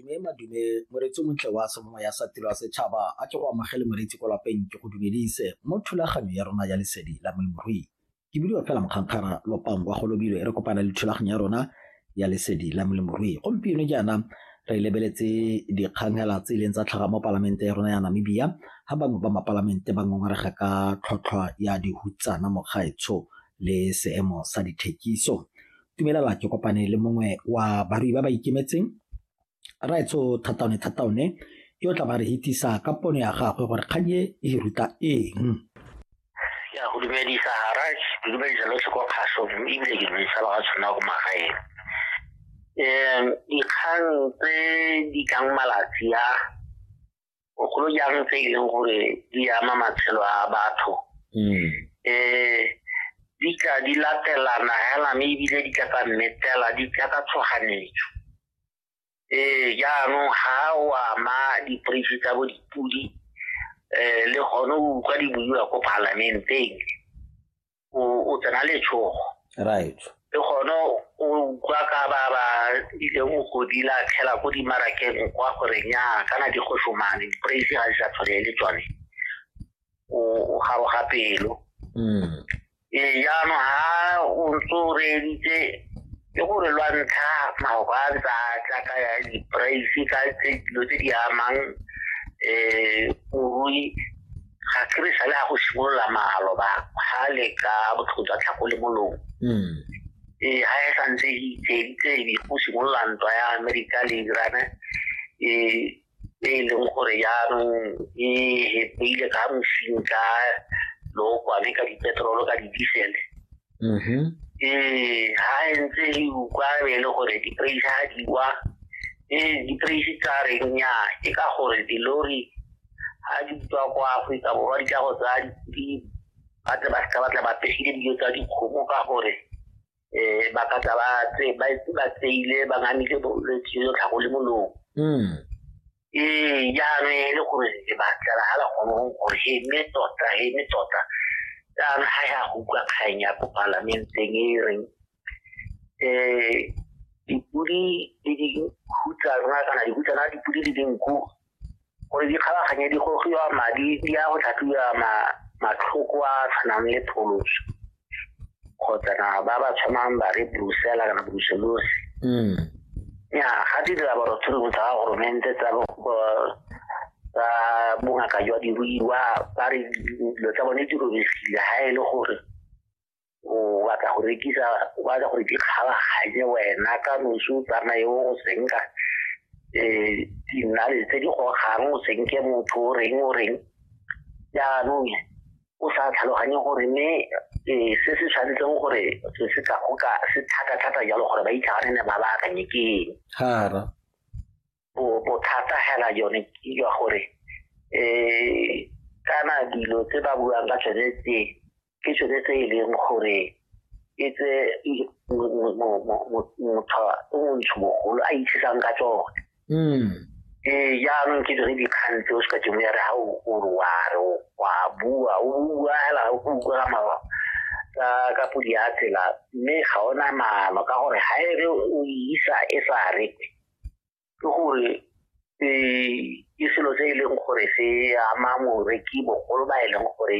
Mme madume moreetsi o montle wa semongwe ya sa tiro ya setšhaba a ke go amogele moreetsi ko lapeng ke go dumedise mo thulaganyo ya rona ya lesedi la molemirui ke bidiwa fela mokgantshara lopang kwa golobilo e re kopana le thulaganyo ya rona ya lesedi la molemirui gompieno jaana re lebeletse dikgangela tse e leng tsa tlhaga mo palamente ya rona ya namibia ga bangwe ba mapalamente ba ngongorega ka tlhotlhwa ya dihutsana mogaetsho le seemo sa dithekiso itumelela ke kopane le mongwe wa barui ba ba ikemetseng raetsho thataone thataone yo tla ba re hitisa ka pono ya gagwe gore kgang e e ruta eng ya go dumedisa garage ke dumedisa lotlhe kwa kgaso ebile ke dumedisa ba ga tshwana ko magaeng um dikgang tse di tlang malatsi a bogolo jang tse e leng gore di ama matshelo a batho um di tla di latelana hela mme ebile di tla ka mmetela di tla ka tshoganetso um jaanong ga o ama diporeisi tsa bo dipodi um le gone o utlwa di buiwa ko palamenteng o tsena letshogo right le gone o utlwa ka ba ba ileng o godila tlhela ko dimarakeng kwa gore nya kana di go somane di-praise ga di sa tshwane le tsone o garoga pelo mm. ee jaanong ga o ntse o reeditse ke gore lwa ntlha maoka a ntse a tla ka ya di-praise ka dilo tse di amang um morui ga ke re sale ga go simolola malo ba ga le ka botlhoko jwa tlhako le molomo hmm. ee ga e santse e itseitse e go simolola ntwa ya amerika le irane e, e e leng gore jaanong e hepeile ka mosing ka lookwane ka dipetrolo ka didisele mm-hmm. ee ga e ntse e ukwa be e le gore dipraise ga di wa ee dipraise tsa reng nya ke ka gore dilori ga di tswa kwa aforika borwa di tla go tsaya dipidi ba tle ba seka ba tla ba pegile dijo tsa dikgomo ka gore um ba ka tla ba tseile ba ngamile bolwetse jo tlhago le molong hmm. ee jaanong e le gore le batlela ga la kgonong gore he mme tota he mme tota jaanong ga ya go utlwa kgang ya ko palamenteng e reng um dipodi le dikhutsa rona kana dikhutsana dipodi le dinku gore di kgabaganye di gogiwa madi di ya go tlhatlhiwa matlhoko a tshwanang le pholoso kgotsa na ba ba tshwanang ba re brusela kana bruselosi mm. ya ga di dira borotshologo tsa ga goromente tsa tsa bongaka jwa diruiwa ba re dilo tsa bone di robegile ga e le gore o batla go rekisa o batla gore ke kgabaganye wena ka nosi o tsamaye o go senka um dinale tse di gogang o senke motho o reng o reng jaanong o sa tlhaloganye gore mme um se se tshwanetseng gore se se ka goka se thata-thata jalo gore ba itlhaganene ba ba akanye ke eng bothata hela yone ke jwa gore um kana dilo tse ba buang ka tsone tse ke tsone tse e leng gore e tse motho o montsho mogolo a itshisang ka tsone hmm. ee jaanong ke tsone dikgang tse o se ka temo ya re ga o re wa re wa bua o bua fela o utlwela mawa ka ka podi ya tsela mme ga ona maano ka gore ga e re o isa e sa rekwe ke gore ke selo se e leng gore se ama moreki bogolo ba e leng gore